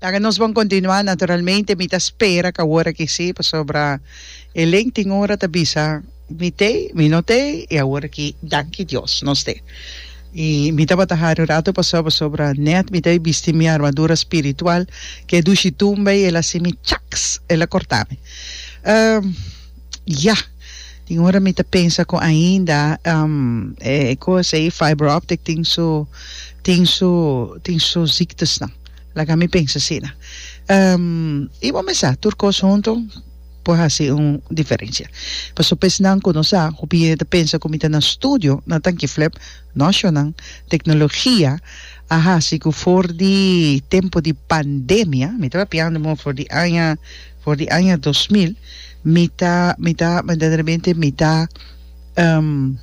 Laga nos bon continua naturalmente mi ta spera ca word aki si pasobra e link tin ora ta bisa mi te mi no te y awor aki danki Dios nos te y mi tabata hari un rato paso pasobra net mi ta bai bisti mi armadura spiritual ke dushi tumba y el a hacimi chaks el a cortami. Ya! Tin ora mi ta pensa cu ainda e cos ey fiber optic tin su tin su tin su ziekte'snan. Laga mi pensa asina. Y bo mesa tur cos hunto por haci un diferencia. Pasobra pa esnan cu no sa hopi hende ta pensa cu mi ta na studio na Tanquiflep. No shonan, tecnologia a haci cu for di tempo di pandemia, mi tabatin piando for di aña For di aña dos mil, mi ta, mi ta, berdaderamente mi ta, um,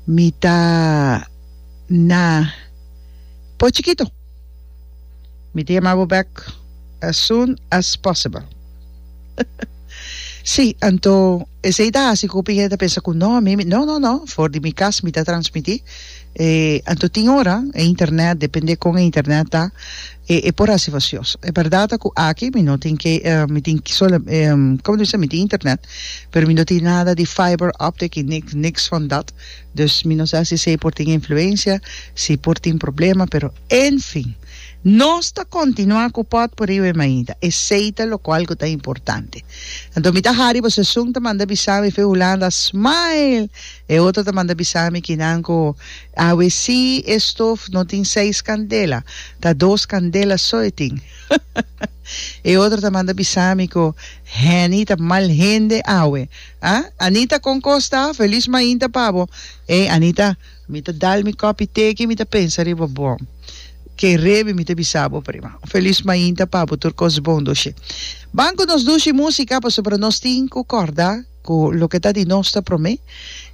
mi ta na Poi Chikito. Mi ta yama bo bek as soon as possible. Sí, anto esei ta hasi ku hopi hende ta pensa ku no, mi, mi, no, no, no, for di mi kas mi ta transmití. E, anto tin ora e internet, depende kon e internet ta, E e por hasi vasios. E berdad ta cu aki mi no tin ke mi tin sola como ta bisa mi tin internet pero mi no tin nada di fiber optic y ni niks van dat dus mi no sa si esey por tin influencia si por tin problema pero en fin nos ta continua cu pot por riba e maida esey ta locual cu ta importante anto mi ta hari bo sesun ta manda bisami fe Hulanda smile e otro ta manda bisami kinan cu Awe si e stof no tin seis candela, ta dos candela so e tin. E otro ta manda bisa mi cu Henny ta mal hende awe. Ah? Anita con cos ta? Feliz mainta pa bo. Ey Anita, mi ta dal mi copi te aki mi ta pensa riba bo. Ke rebi mi ta bisa bo prima. Un feliz mainta pa bo tur cos bon doshi. Ban cu nos dushi musica pasobra nos tin cu corda. Cu loke ta di nos ta prome.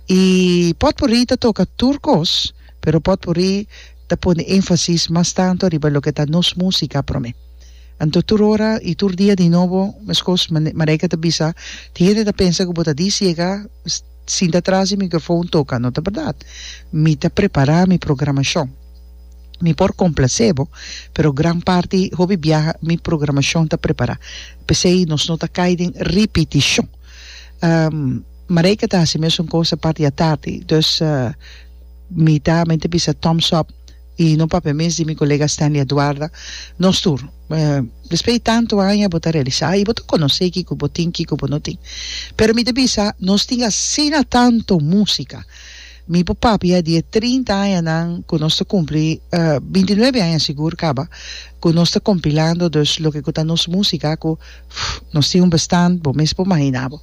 Y potpourri ta toca tur cos, pero potpourri ta pone enfasis mas tanto riba loke ta nos musica prome. Anto tur ora y tur dia di nobo mescos Marijke ta bisa, tin hende ta pensa cu bo ta di ciega, sinta tras di microfoon toca. No ta berdad. Mi ta prepara mi programacion. Mi por complacé bo, pero gran parti hopi biaha mi programacion ta prepará. P'esei nos no ta cai den ripiticion. Marijke ta haci mesun cosa parti a tardi. Dus mi ta men ta bisa thumbs up y no papia mes di mi colega Stanley Aduarda, nos tur. Despues di tantu aña bo ta realisá y bo ta conocé kico bo tin, kico bo no tin. Pero mi ta bisa nos tin asina tantu musica. Mi por papia di e trinta añanan ku nos ta kumpli, binti nuebe aña sigur kaba, ku nos ta kompilando, dus loke ku ta nos músika ku, pff, nos tin un bestan, bo mes por mahiná bo.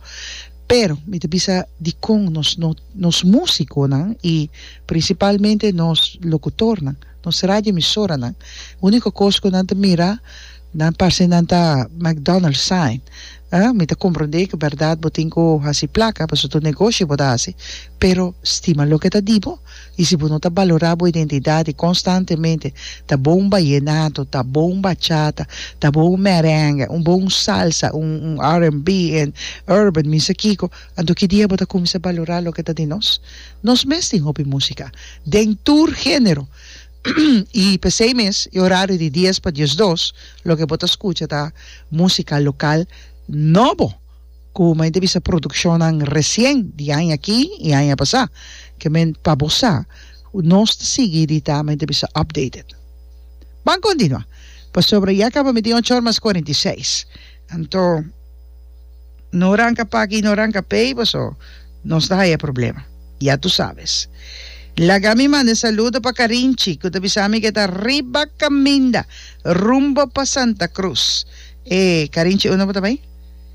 Pero, mi ta bisa dikon nos no, nos músikonan i prinsipalmente nos lokutornan, nos radioemisoranan, úniko kos ku nan ta mira, Nan parse nan ta McDonald's sign. Ë, mi ta komprondé ku bèrdat bo tin ku hasi plaka, pasobra ta un negoshi bo ta hasi, pero stima loke ta di bo, i si bo no ta balorá bo identidat i konstantemente ta bo un bayenato, ta bo un bachata, ta bo un merenge, un bo un salsa, un un RNB en urban, mi sa kiko, anto ki dia bo ta kuminsá balorá loke ta di nos? Nos mes tin hopi músika, den tur género! I p'esei mes e orario di dies pa diesdos loke bo ta skucha ta músika lokal nobo ku mayormente bisa produkshonnan resien di aña aki i aña pasá ke men pa bo sa nos ta sigui di ta mayormente bisa updated. Ban kontinuá pasobra ya kaba mi tin ochor mas kuarenta i seis. Anto, no ranca paki y no ranca pey boso, nos ta haya problema. Ya tu sabes. Laga mi manda e saludo pa Carinchi, cu ta bisa mi cu e ta riba caminda rumbo pa Santa Cruz. E Carinchi uno bo ta bay?